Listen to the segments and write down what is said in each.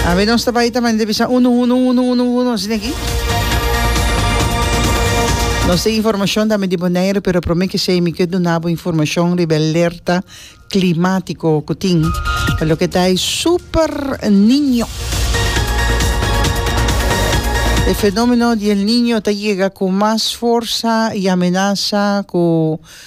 Awe nos ta bai ta mende bisa unu unu unu unu unu asina aki. Nos tin informacion dame di Bonaire pero prome ki sei mi ke dunabo informacion riba alerta climático ku tin pa loke ta e super niño. E fenomeno di el niño ta yega ku mas forsa i amenasa ku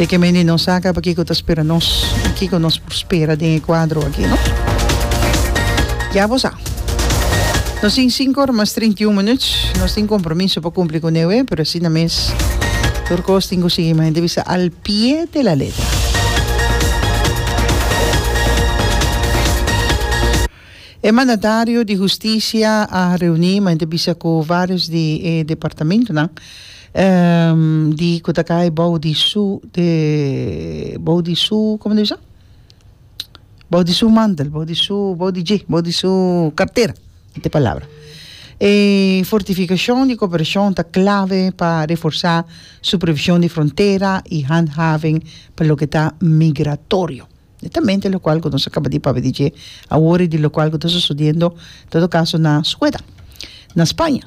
Si ke mendi nos saca pakico ta spera nos y kico nos por spera den e cuadro aki no. Ya bo sa. Nos tin cinco ora mas treinta y un minuut. Nos tin compromiso pa cumpli cu newe pero asina mes tur cos tin cu sigui mante bisa al pie de la letra. E mandatario di Hustisia a reuni ma e ta bisa ku vários di e departamentunan di ku ta kai bou di su bou di su kòm e ta bisa bou di su mantel bou di su bou di dje bou di su kartera esa e palabra e fortifikashon di koperashon ta klave pa reforsá supervishon di frontera i handhaving pa loke ta migratorio. netamente lokual ku nos a kaba di papia di dje awor i di lokual ku ta sosodiendo en todo kaso na Sueda, na Spaña.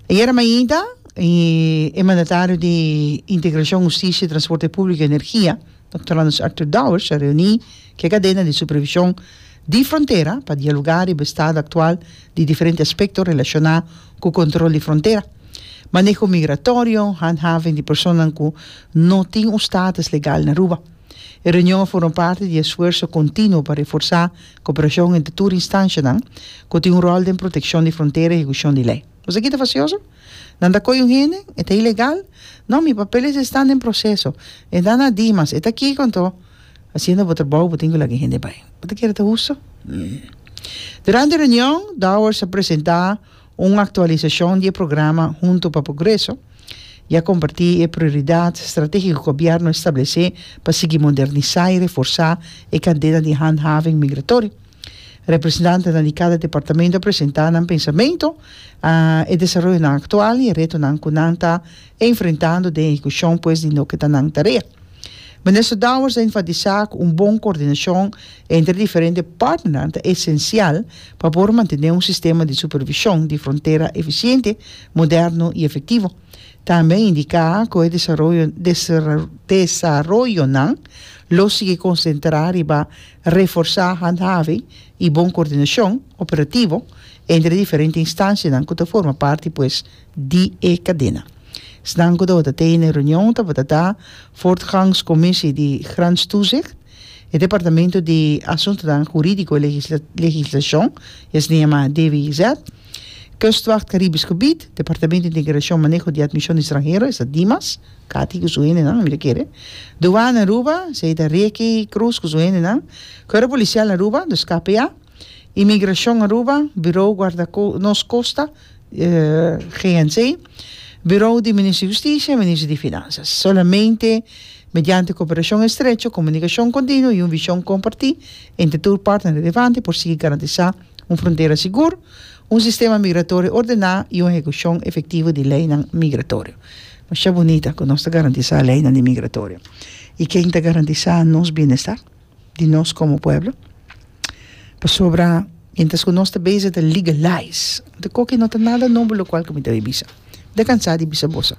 Ayera mainta e e mandatario di Integrashon, Hustisia, Transporte Públiko i Energia, Dòkter Anders Arthur Dowers, a reuní ku e kadena di supervishon di frontera pa dialogá riba e estado aktual di diferente aspekto relashoná ku kontrol di frontera, maneho migratorio, handhaving di personanan ku no tin un status legal na Aruba. E reunion a for un parti di esfuerso continuo pa reforsa cooperacion entre tur instancianan cu tin un rol den proteccion di frontera y ehecucion di ley. Esaki ta facioso? Nan ta coy un hende? E ta ilegal? No, mi papeles estan den proceso. E ta na Dimas. E ta kico anto? Haciendo bo trabou bo tin cu lak e hende bay. Bo ta kere ta husto? Durante e reunion, Dowers a presenta Un aktualisashon di e programa Hunto pa Progreso ya kompartí e prioridat stratégiko gobièrnu establesé pa sigui modernisá i reforsá e kadena di handhaving migratorio. Representantenan di kada departamento a presentá nan pensamentu, e desaroyonan aktual i e retonan ku nan ta enfrentando den ehekushon pues di loke ta nan tarea. Minister Dowers a enfatisá ku un bon koordinashon entre diferente partnernan ta esensial pa por mantené un sistema di supervishon di frontera efisiente, moderno i efektivo. Tambe a indiká ku e desaroyonan lo sigui konsentrá riba reforsá handhaving i bon koordinashon operativo entre diferente instansianan ku ta forma parti pues di e kadena. Esnan ku tabata tei na e reunion tabata ta Voortgangscommissie di Grenstoezicht, e Departamento di Asuntonan Hurídiko i Legislashon, esnan yama DWIZ, Kustwacht Karibisch Gebied, Departamento Integrashon Maneho di Admishon di Stranhero, esa Dimas, Kati ku su hendenan, mira kere, Duwana Aruba, esei ta Ricky Cruz ku su hendenan, Kuerpo Polisial Aruba, dus kpa, Imigrashon Aruba, Birou Guarda Nos Kosta, GNC, Birou di Minister Husticia i Minister di Finansas. Solamente mediante koperashon estrecho, komunikashon kontinuo i un vishon kompartí entre tur partner relevante por sigui garantisá un frontera sigur, un sistema migratorio ordená i un ehekushon efektivo di leinan migratorio. Masha bunita ku nos ta garantisá leinan di migratorio. I ken ta garantisá nos bienestar? di nos komo pueblo pasobra mientras ku nos ta bezig ta legalize anto koke no ta nada nobo lo kual ke mi ta bai bisa mi ta kansa di bisa boso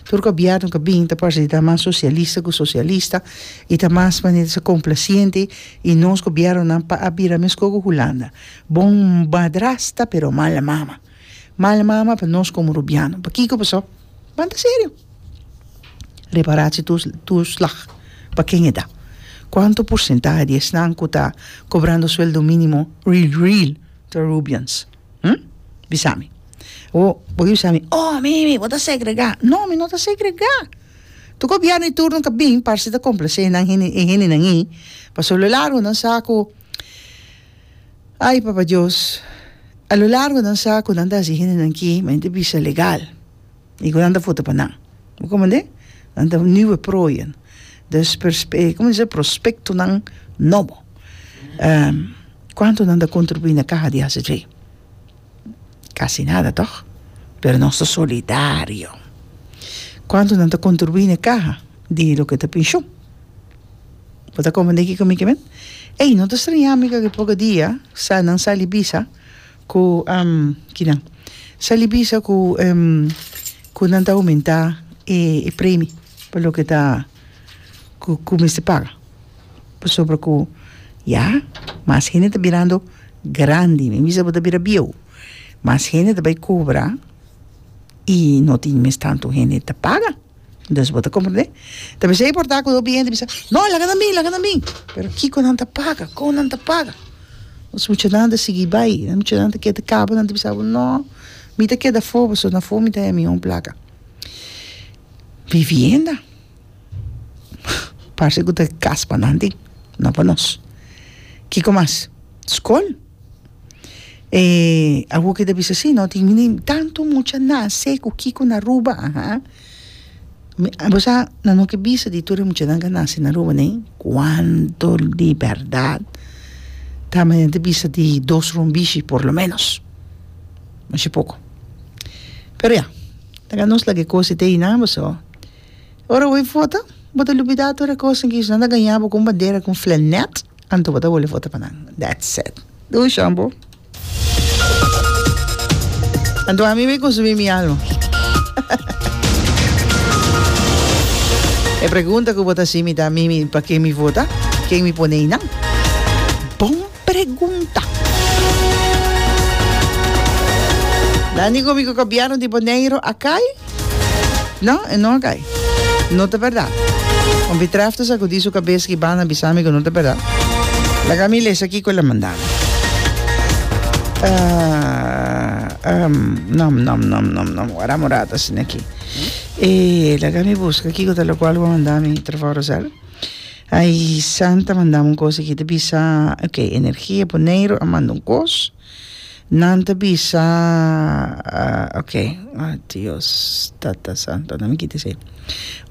tur gobièrnu ke bini ta parse di ta mas sosialista ku sosialista i ta mas manera di ser komplasiente i nos gobièrnunan pa a bira meskos ku hulanda bon madrasta pero mala mama. Mal mama pa nos komo rubiano. Pakiko pasó? Pan ta serio. Repará si tur turslag pa ken e da. Kuantu porsentahe di esnan ku ta kobrando sueldo mínimo real real ta rubians? Hm? Bisa mi. O bo ke bisa mi, Oh, Mimi, bo ta segregá. No, mi no ta segregá. Tu gobièrnu di turno ka bin parse ta komplase nan, e hendenan ei. Pasobra lo largo nan sa ku. Ay, Papa Dios, a lo largo nan sa cu nan ta haci hendenan ki mente bisa legal y cu nan ta vota pa nan. Bo comprende? Nan ta nieuwe prooien. Dus perspe-, como se dice? Prospectonan nobo. Ehm, cuanto nan ta contribui na caha di ACJ? Casi nada, toch? Pero nos ta solidario. Cuanto nan ta contribui na caha di loke ta pensioen? Bo ta komprendé kiko mi ke bend? Ey, no ta streñá mi ku e poko dia sa nan sali bisa ku kinan sali bisa ku ku nan ta oumentá e premi pa loke ta ku ku mester paga pasobra ku ya mas hende ta birando grandi mi bisa bo ta bira bieu mas hende ta bai kobra i no tin mes tantu hende ta paga. Entonces bo ta comprende? Ta mester importa cu hopi hende bisa, No, laga na mi, laga na mi. Pero kico nan ta paga? Con nan ta paga? Nos muchanan ta sigui bay, nos muchanan ta kier ta caba, nan ta bisa bo, No, mi ta keda afo, pasobra na afo mi ta haya mi un placa. Vivienda, parse cu ta cas pa nanti, no pa nos. Kico mas? Scol. E awo ke ta bisa si no tin mini tanto mucha nase ku kiko na Aruba aha bo sa nan no ke bisa di tur e muchanan ke a nase na Aruba nei kuantu di bèrdat ta me ta bisa di dos rumbishi por lo menos mishi poko pero ya ta nos la ke kosa te eyunan boso. Ora bo a vota, bo ta lubidá tur e kosanan ki esnan ta gañá bo kon bandera, kon flenet, anto bo ta wòl a vota pa nan. That's it. Dou shon bo. Anto ami bo a konsumí mi alma. E pregunta ku bo ta hasi mi ta, Mimi, pa ken mi vota? Ken mi pone einan? Bon! Dani Gobi ku Gobièrnu di Boneiru a kai? No, e no a kai. No ta bèrdat. Wan Bitrèfte sakudí su kabes ki banda a bisa mi ku no ta bèrdat. Laga mi lesa kiko el a manda mi. Wara morada a siña aki. Laga mi buska kiko ta lokual ku a manda mi, Trevor Rosel. Ai San ta mandá un kos aki ta bisa ok energia Boneiru a manda un kos nan ta bisa ok Dios tata santo nan mi kita esei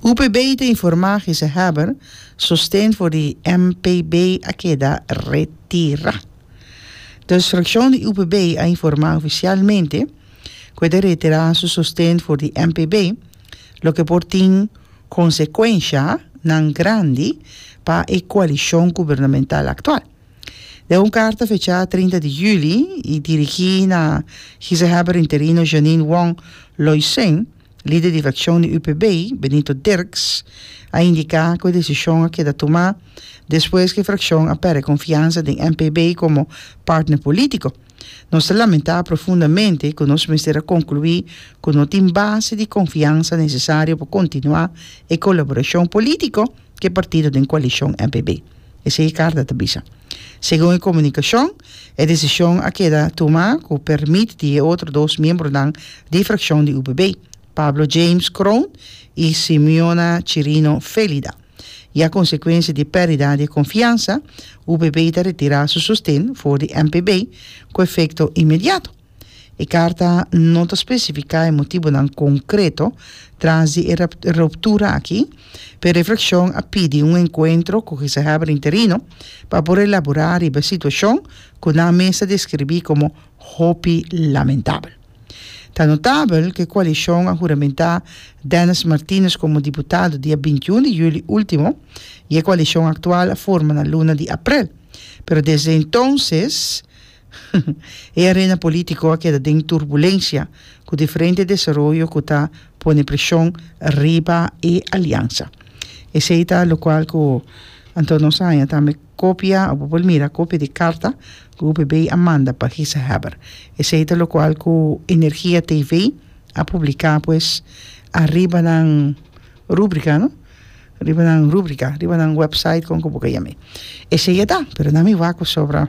UPB ta informa gezaghèber sosten for di MPB a keda retira dus frakshon di UPB a informa ofisialmente ku e ta retira su sosten for di MPB. loke por tin konsekuenshanan grandi pa e koalishon gubernamental aktual. Den un karta fechá trinta di juli i dirigí na Gezaghèber Interino Jeanine Wong Loysen, lider di frakshon di UPB, Benito Dirks, a indiká ku e desishon a keda tumá despues ku e frakshon a pèrdè konfiansa den NPB komo partner polítiko. Nos ta lamentá profundamente ku nos mester a konkluí ku no tin base di konfiansa nesesario pa kontinuá e kolaborashon polítiko ku e partido den koalishon MPB, esei e karta ta bisa. Segun e komunikashon, e desishon a keda tumá ku pèrmit di e otro dos miembronan di e frakshon di UPB, Pablo James Kroon i Simeona Chirino Félida. i a konsekuensia di perdida di konfiansa, UPB ta retira su sosten for di MPB ku efekto inmediato. E karta no ta spesifiká e motibunan konkreto tras di e ruptura aki, pero e frakshon a pidi un enkuentro ku gezaghèber interino pa por elaborá riba e situashon ku nan mes ta deskribí komo hopi lamentabel. Ta notabel ku e koalishon a huramentá Dennis Martinez komo diputado dia bintiun di juli último i e koalishon aktual a forma na luna di aprel. Pero desde entonses e arena polítiko a keda den turbulensia ku diferente desaroyo ku ta pone preshon riba e aliansa. Esei ta lokual ku Antonio Saña tambe Kopia, bo por mira, kopia di karta ku UPB a manda pa Gisehebber. Esei ta lokual ku Energia TV a publiká pues ariba nan rúbrika, no? Riba nan rúbrika, riba nan wèpsait kon ku bo ka yam'e. Esei e ta, pero nan mi wak ku sobra.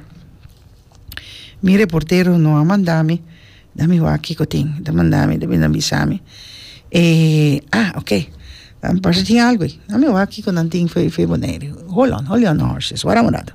Mi reportero no a mandami na mi wak kiko tin ta mandami ta bini a bisami e ah ok mi parse tin algu ey na mi wak kiko nan tin fe fe bonaire hold on hold on horses waran un rato.